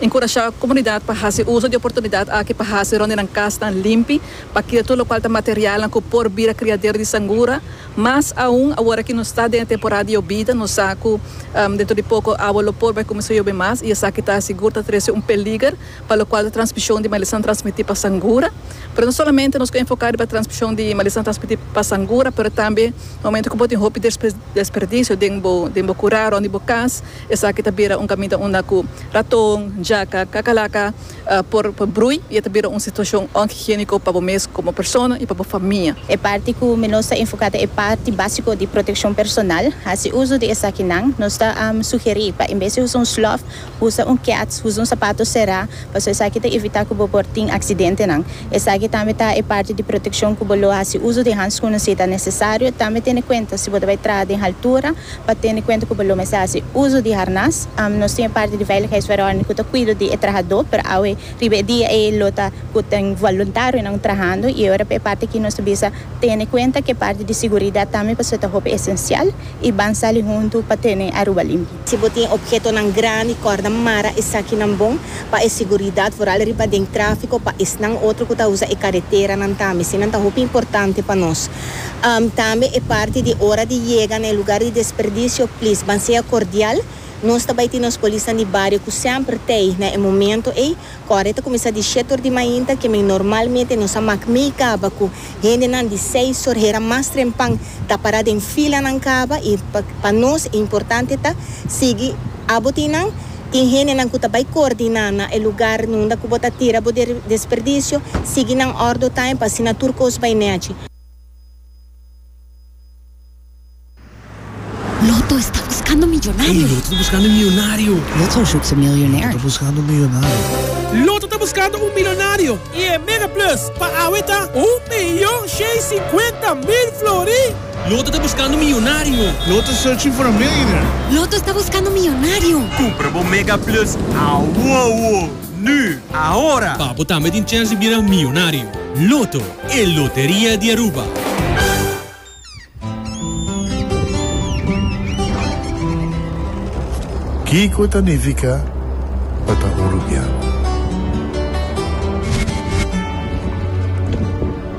Enkurashá komunidat pa hasi uso di oportunidat aki pa hasi rònt di nan kasnan limpi, pa kira tur lokual ta materialnan ku por bira kriadero di sangura. Mas aun, awor aki nos ta den e temporada di yobida, nos sa ku dentro di poko awa lo por bai kuminsá yobe mas i esaki ta sigur ta trese un peliger pa lokual ta transmishon di malisan transmití pa sangura. Pero no solamente nos ku enfoká riba transmishon di malisan transmití pa sangura, pero tambe momente ku bo tin hopi desperdisio den bo kurá rònt di bo kas, Esaki ta bira un kaminda unda ku raton, jaka, kakalaka por brui i e ta bira un situashon onhigiéniko pa bo mes komo persona i pa bo famia. E parti ku mi lo sta enfoká ta e parti básiko di protekshon personal. Hasi uso di esakinan. Nos ta sugerí pa en bes di usa un slòf, usa un kèts, usa un sapato será, pasobra esaki ta evitá ku bo por tin aksidentenan. Esaki tambe ta e parti di protekshon ku bo lo hasi uso di hanskun si ta nesesario. Tambe tene kuenta si bo ta bai traha den haltura. Pa tene kuenta ku bo lo mester hasi uso di harnas. Nos tin e parti di veiligheidsverordening ku ta kuido di e trahadó, pero awe riba e dia ei lo ta ku tin voluntarionan trahando i ora pa e parti aki nos ta bisa tene kuenta ku e parti di siguridat tambe pasobra ta hopi esensial i ban sali huntu pa tene Aruba limpi. Si bo tin ophetonan grandi, kòrda mara esakinan bon pa e siguridat, vooral riba den tráfiko pa esnan otro ku ta usa e kareteranan tambe. Eseinan ta hopi importante pa nos. Tambe e parti di ora di yega na e lugar di desperdicio, please ban sea cordial, nos ta bay tin nos polisnan di bario cu semper ta ey na e momento ey, cu awor e ta cuminsa di shete or di mainta, que men normalmente nos a mak mey caba cu hendenan di seis or hera mas trempan ta para den filanan caba y pa nos e importante ta sigui abo tin nan. Tin hendenan ku ta bai koordiná na e lugar nunda ku bo ta tira bo desperdisio, sigui nan òrdu taim pa asina tur kos bai nèchi. Loto esta buskando un milionario i e Mega Plus pa awe ta un miyon shei sinkuenta mil florì! Loto ta buskando miyonario. Loto is searching for a millionaire. Loto sta buskando miyonario. Kumpra bo Mega Plus awowo, nu, ahora! Pa bo tambe tin chèns di bira miyonario. Loto, e loteria di Aruba. Kiko ta nifica pa ta un rubian?